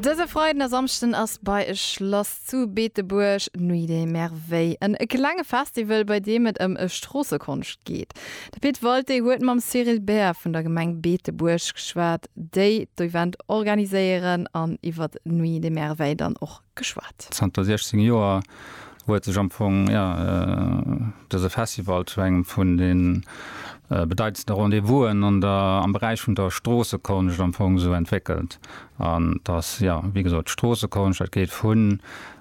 Dëse Freiden a Samschden ass bei e Schlass zu Beetebuerg Nuit des Merveilles, en klenge Festival, bei deem et ëm Stroossekonscht geet. De Pit Walté huet mam Cyril Baer vun der Gemeng Beetebuerg geschwat, déi d'Event organiséieren an iwwer d'Nuit des Merveilles dann och geschwat. Zanter 16 Joer huet sech am Fong dëse Festival zu engem vun de bedeitendste Rendez-vousen am Beräich vun der Stroossekonscht am Fong esou entwéckelt. An et ass, jo, wéi gesot, d'Stroossekonscht, dat geet vu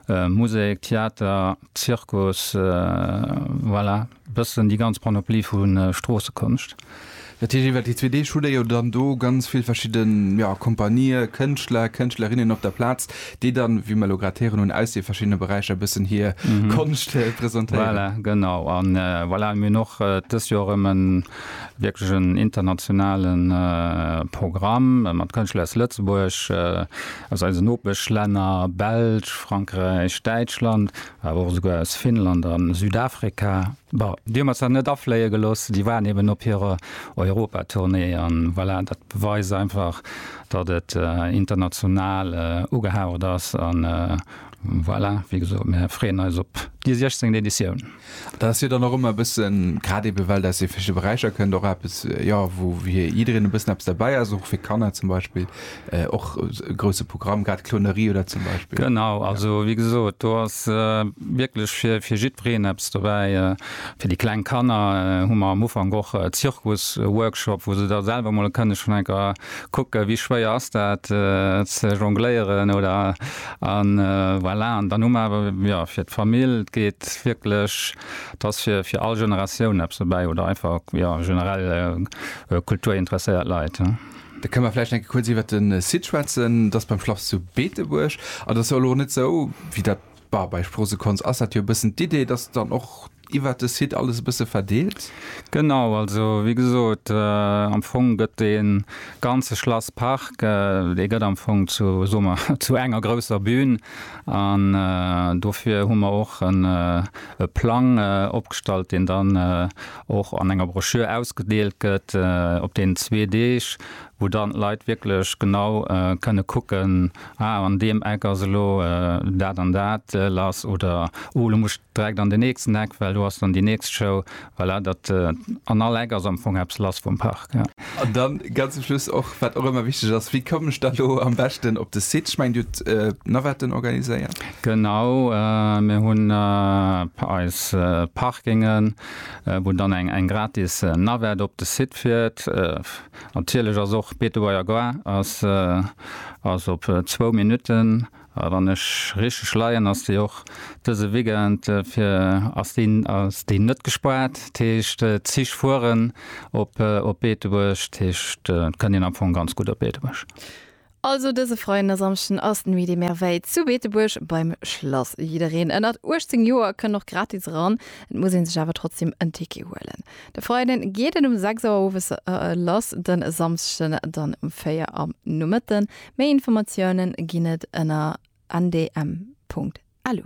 Musek, Theater, Zirkus, voilà. Bëssen déi ganz Panoplie vu Stroossekonscht. Dat heescht, iwwer déi zwee Deeg hutt Der jo dann do ganz vill verschidde Kompanië, Kënschtler, Kënschtlerinnen op der Plaz, déi dann, wéi mer elo grad héieren hunn, aus de verschiddene Beräicher e bëssen hir Konscht presentéieren. Voilà, genau. A voilà, mir hunn och dëst Joer erëm e wierklech en internationale Programm mat Kënschtler aus Lëtzebuerg, aus eisen Nopeschlänner, Belsch, Frankräich, Däitschland. Awer och esouguer aus Finnland a Südafrika. Bon, déi hu mer zwar net afléie gelooss, déi waren eben op hirer Europatournée. An voilà, dat beweist einfach, datt et international ugehaucht ass. A voilà, wéi gesot, mir freeën eis op déi siechzéngt Editioun. Dat ass jo dann och ëmmer e bëssen, grad eben well dat aus de verschiddene Beräicher kënnt, och eppes, jo, wou jiddereen e bëssen eppes derbäi ass, och fir d'Kanner zum Beispill. äh, och e grouse Programm, grad Clonerie oder zum Beispill. Genau, also wéi gesot, do ass äh, wierklech fir, fir jiddwereen eppes dobäi. Äh, fir déi kleng Kanner äh, hu mer am Ufank och äh, Zirkus-Workshop, wou se da selwer mol kënne schonn eng Kéier kucken, wéi schwéier ass dat äh, ze jongléieren oder an äh, voilà. An dann hu mer awer ja, fir d'Famill, et geet wierklech, et ass fir, fir all Generatioun eppes dobäi oder einfach ja, generell äh, kulturinteresséiert Leit. Da kënne mer vläicht enke kuerz iwwert de Site schwätzen. Dat ass beim Schlass zu Beetebuerg. An dat ass jo elo net esou, wéi dat bal bei Sproossekonz ass dat jo e bëssen d'Idee, dass dann och iwwert de Site alles e bësse verdeelt? Genau, also wéi gesot, am Fong gëtt dee ganze Schlasspark, dee gëtt am Fong zu, soe mer, zu enger grousser Bühn. An dofir hu mer och e Plang opgestallt, deen dann, och an enger Broschür ausgedeelt gëtt op deenen zwee Deeg, wou dann d'Leit wierklech genau kënne kucken, ah an deem Eck ass elo dat an dat lass oder oh elo muss ech direkt an den nächsten Eck, well do ass dann déi nächst Show. Voilà, dat an all Eck ass am Fong eppes lass vum Park. An dann ganz zum Schluss och, wat och ëmmer wichteg ass, wéi kommen ech da elo am beschten op de Site? Ech mengen dir hutt Navetten organiséiert? Genau, mir hunn eis Parkingen. wou dann eng eng gratis Navette op de Site fiert. Natierlech ass och Betevoairgua ass ass op zwou Minutten. A wann ech richteg leien, ass déi och dëse Weekend fir ass déi ass déi net gespaart. Dat heescht d'Zich fueren op op Beetebuerg. Dat heescht et kënnt een am Fong ganz gutt op Beetebuerg. Also dëse Freiden a Samschden ass d'Nuit des Merveilles zu Beetebuerg beim Schlass. Jiddereen ënnert 18 Joer kënn och gratis eran, et muss ee sech awer trotzdeem en Ticket huelen. De Freiden geet et um 6 Auer owes lass, de Samschden dann um 4 am Nomëtte. Méi Informatiounen ginn et ënner ndm.lu.